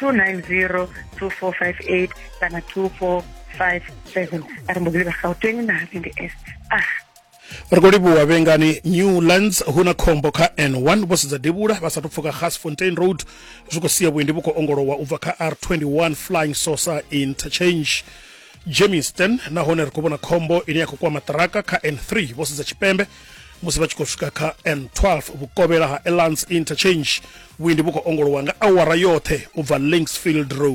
2902458 kana 2457 ari mbo livha gauteng na havende est ah ri khou livhuwa vhengani newlands hu na khombo kha n1 vho sedza devhula vha sathu pfuka gasfontein road zwi khou sia vhuendi vhu khou ongolowa u bva kha r21 flying saucer interchange jameson nahone ri khou vhona khombo ine ya khou kwama ṱiraka kha n3 vho sedza tshipembe musi vha tshi khou swika kha n12 vhukovhela ha elance interchange vhuendi vhu khou ongolowa nga awara yoṱhe u bva linksfield road